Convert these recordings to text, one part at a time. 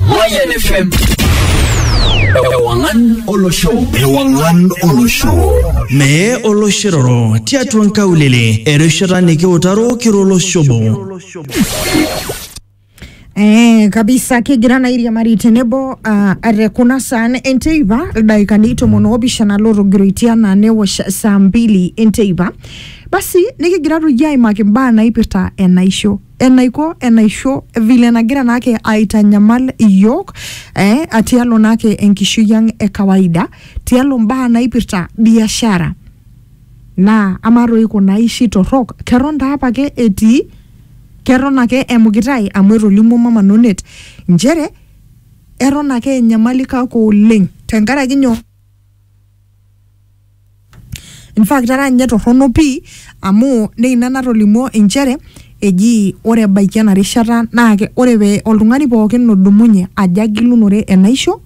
Mayan FM. Ewangan Olosho. Ewangan Olosho. Mee oloshiroro tiatua nkaulele erishata nikiutaro kiro oloshobo. Eh, kabisa kigira na iriamari tenebo uh, are kuna saan enteipa ildaikani tomon oopishana lootogiroitia naa newosh saa mbili enteipa basi nikigira toi aimaki imbaa naipirta enaisho enaiko enaisho vile nagira naake aitanyamal iyiook eh, atialo naake enkishui ang e kawaida tialo mbaa naipirta biashara naa amaa toi kuna aishi torrok keton taa apake etii keton ake emukitae amu etolimuo mama nonet nchere eton ake enyamali kake oleng tenkaraki nyoo In fact era ninye torrono pii amu naa ina natolimuo inchere eji ore ebaiki ena rishata naa ke- ore pee oltung'ani pookin odumunye ajo agilunore enaisho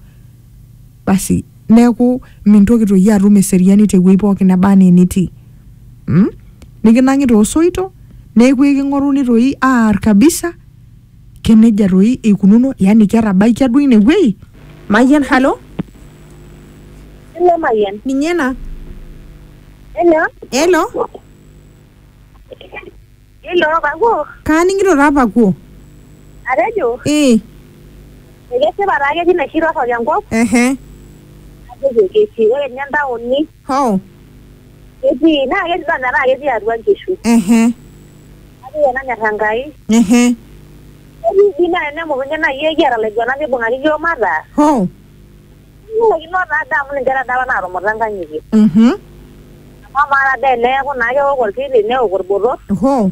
basi neeku mintoki toi atum eseriani tewuei pookin neba enaa enitii mm? nikinang'i toosoito neeku eking'oruni toi aar kabisa Keneja toi eikununo yani ketabaikia duo ine wuei? Mayian halo? Hello Mayian. Ninye ena? Hello? Hello? Hello Pakuo? Kaaning'ito taa Pakuo. Atejo? Ee. Ekesipa taa ketii naishi torrok enkop? Ehe. Atejo ketii. Ore ninye ntaoni. Hoo. ketii naa ketii doi metaa ketii atua nkishu Ehe. kake iyie nanyor Enkai Ehe. ketii dii naa tenemukunye naaji iyie kiata ilaiguanak nibung'aki iyiook mataa Hoo. kilaikino taa doi amu ninche taa doi apa naatumuta nkang'itie Mhm. amu amaa taa doi teneeku naa keok orkiti neok orbotor Hoo.